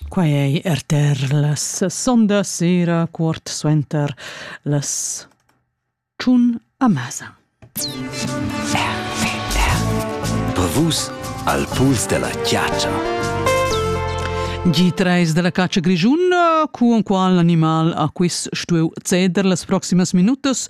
Quai ei rtr las sondas sera, quart suenter las tschun a mesa. Per vus al puls della chiaccia. G3 della caccia grigiun, cu un qual animal a quis stueu ceder las proximas minutas,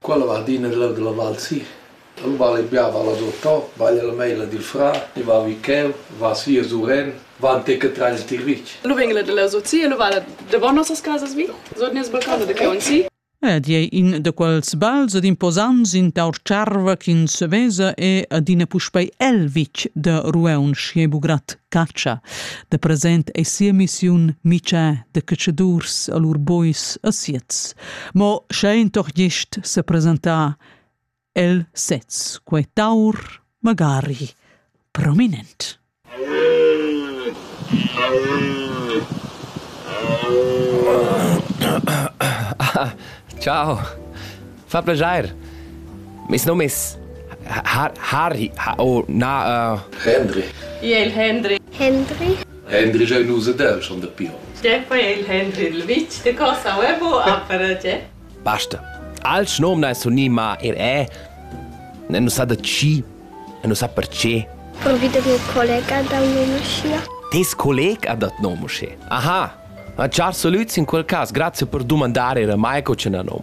Quella va adina giu dalla val si. Lu vala il bia val a Dottò, baglia la meila dil frà, e va vi cheu, va si a Suren, va antic a trair il tirvitg. Lu vegn la dalla Sozi e lu vala davon nossas casas vi, sut nies balcon da cheu si. Ed ei in da quels bals ed imposants in tar tscharva ch'ins vesa è adina puspei el vitg da Rueun Schiebugrat catscha. Da present ei sia missiun mitschà da catschadurs a lur bois a Siez. Mo sche in toc gist se presentà, el sez quei taur magari prominent. Ciao. Fa piacere. Mes nome è Harry. Oh, na. Uh... Henry. Io il Henry. Henry. Hendri jeu nus ed el schon dapi onns. Quei è il Hendri il vitg de Cossau e bu ha per tge. Basta. Alch nom da sunni ma er è. Ne nu sa da chi e nu sa perché. Convido mio collega da un'emoschia. Tes collega ha dat nom usche. Aha. Ma char salut in quel cas, grazie per dumandare era mai co ce na nom.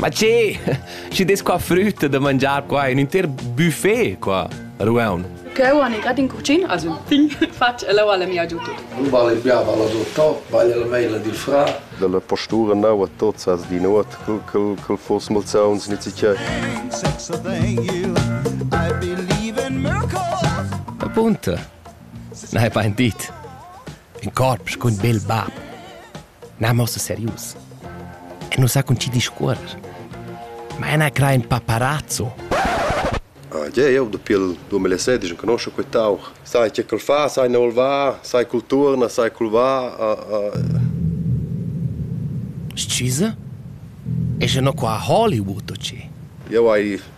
Ma che? Schi des qua frütta da mangiar qua, un inter buffet qua, Rueun. Cheu han i grad in cucin, also un pign fatg e leu alla mia giu tut. Non vale più, vale tutto, vale la maila dil fra. Della postura nau a tots as di nuot, cul cul cul fors malsauns nit sicher. Appunto. Na hai paint dit. in corps cun bel bab. N'hamus serius. E nus ha cun ti discuorrer. Ma ena cra in paparazzo. Ah, yeah, eu dapi il 2016 non conosco quei tau. Sai che col fa, sai ne va, sai col turna, sai col va. Uh, uh. Scusa? E je no qua a Hollywood, o ci? Eu ai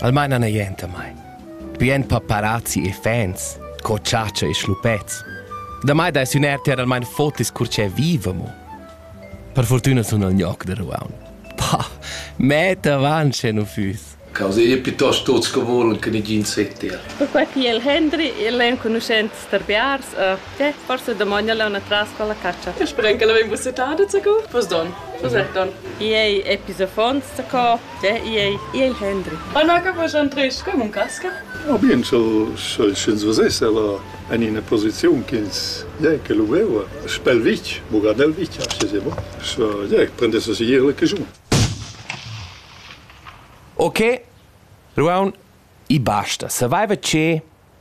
Almaina n'ei enta mai. Bien per parazzi e fans, co chatscha e schluppets. Da mai dais ün er ter almain fotis cur che viva mo. Per fortüna sun al gnoc da ruaun. Bah, metta avanti sche nu füss. Causa è piuttosto tutti che vogliono che nessuno sentire. Perquai il Henry e l'enconuschent Starbiars e che forse domani alla una tras con la caccia. Eu spero che l'avevo settata, zacco? Pos don. Cos'è don? Ei episofons, zacco? Il Hendri. Anaga vos Andres, com un casca? Oh bien, sch'el sch'ins vesess ella en ina posiziun ch'ins ja che lu veva, Spelvich, Buganelvich, aschia se mo. So, ja, prendesse si ier la cagiun. Ok, Ruaun, i basta. Saveva che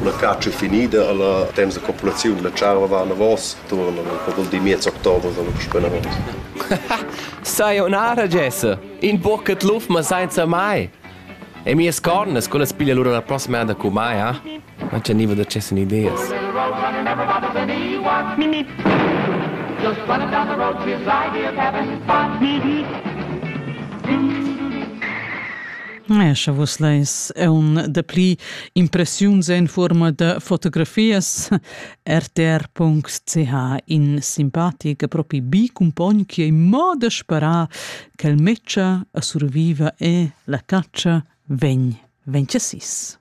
Una catscha finida alla temps da populaziun della tscharva va anavos tuorn per quel di miez october dalla puspei anavos. Sei un'ara Jesse, in buccat luf ma senza mai. E mias cornas, quelle piglia lura la prossima anda cu mai, ha? Non c'è niva da cesse ideas. Just running down the road to his ideal cabin spot. Eir scha vus leis eun dapli impressiuns in fuorma da fotografias, rtr.ch in simpatic e propi bi cumpogn chi ei mo da sparar ch'el metscha a surviva e la catscha vegn, vegn chasis.